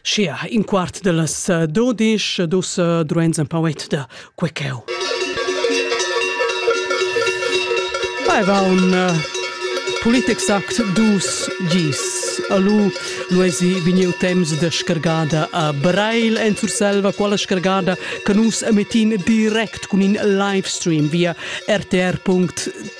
Schia, in quart de las eh, dodisch, dus eh, druens en pauet de quecheu. Vai va un uh, politexact dus gis. Alu luesi viniu temps de scargada a Brail en Surselva, quala scargada che nus emetin direct cun in live stream via rtr.tv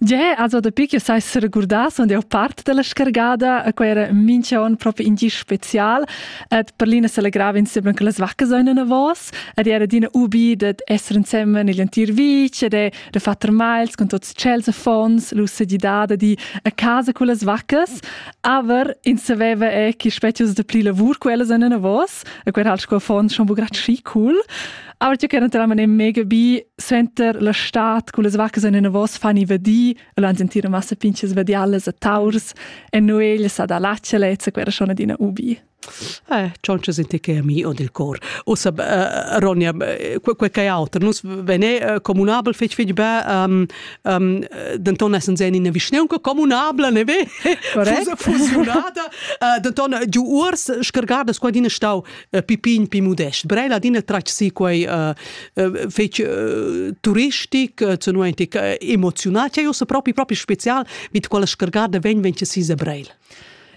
Ge, also dapi che sai seregurdas und jau part dalla scargada, quei era mincha on propi in gi special, et per l'ina celegrava insieme con las vacche soina vos, ed era adina ubi dad essere insieme negli entir vic ed da far termals con tots cels affons, l'ussegidada di a casa con las vaccas, aber ins saveva è che specius da pli lavur quellas soina vos, e quei era sco affons schon bu grat schi cool. Aber tu che naturalmente è mega bi senter la stat con le vacche in vos fani vedi e l'an sentire massa pinches vediales a taurs e Noel sa da laccelezza quera schon adina ubi. Eh, ciò c'è sente che è mio del cor. Ossa, uh, Ronja, quel que che è altro, nus vene uh, comunabel fec fec be, um, um, denton essen sen in vischneun comunabla, ne ve? Correct. Fusionada. uh, denton, giu urs, scargardas qua dina stau, Eh, pipin pi modest. Brel adina tratg si quei uh, uh, fec uh, turistic, uh, zunuentic, uh, emozional, che io se propi propi special mit quella scargada ven ven che si se Brel.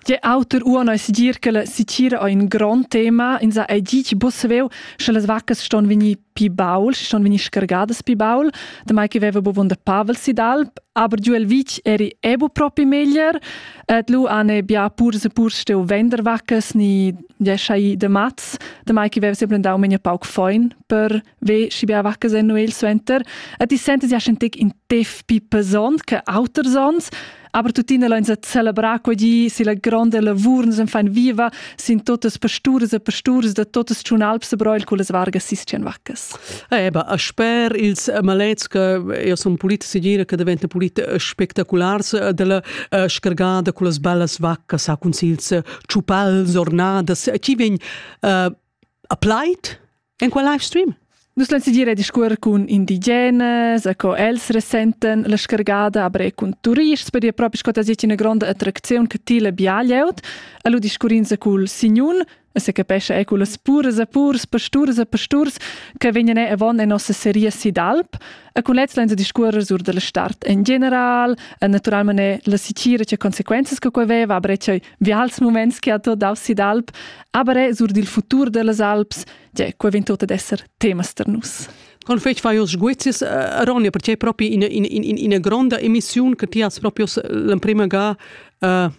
Tge autor uano es dir che la sitira è un gran tema, in sa è dici busveu, sche le vacche ston venir pi baul, si schon vegni scargadas pi baul, damai che veva bovon da Pavel Sidal, aber giu el vic eri ebu propi meglier, et lu ane bia pur se pur steu venderwackes ni jesai de mats, damai che veva sempre dau menia pauc foin per ve si bia wackes enneu il suenter, et ti sentes ja schentek in tef pi pesont che auter sons, Aber tuttina lain sa celebrar quegli si la grande lavur nus fan viva sin totas pasturas e pasturas da totas tschunalps e broil con las vargas sistian vaccas. Eh ba a sper ils malets che io son politici gira che diventa politi spectaculars della uh, scargada con las bellas vaccas a consils ciupals ornadas chi vegn uh, a plaid En qual live stream? Nus lain dir discuor cun indigenas, co els resenten la scargada aber cun turists per dir propi sco das ina gronda attracziun che ti la biaglieut. Allu discurrinza cul signun, se capesce è culas puras e purs, pasturs e pasturs che vegnan avon en nossa serie Sidalp. E con lez lain discuor sur della start en general, e naturalmente la sicira che conseguenze che quei veva, aber che Vials muments che ha tot dau si d'alp, aber è sur dil futur dellas Alps, tgè, quei vegn tot ad esser temas per nus. Con fetg fai os sguizis, eh, Ronja, perché è proprio in, in, in, in, gronda emissione che ti has proprio l'emprima ga uh,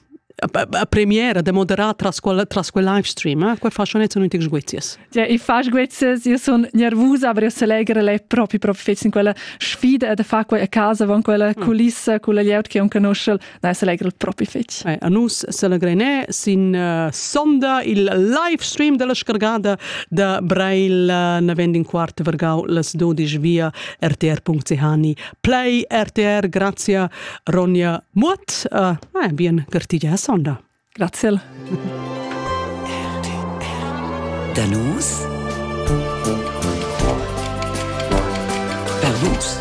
a premiera da moderar tras quel, tras quel live stream, eh? Quei fa schon jetzt nicht sguizis. Ja, ich fa sguizis, io son nervosa, aber io se legere le proprio proprio fetz in quella sfida da fa quella a casa, von quella mm. culissa, quella lieut che un conosce Nein, selegre propi fetg. Eh, a nus selegre ne sin uh, sonda il live stream della scargada da Brail uh, navend in quart vergau las 12 via rtr.ch play rtr grazie Ronja Mutt uh, eh, bien gartigia sonda grazie Danus Per nus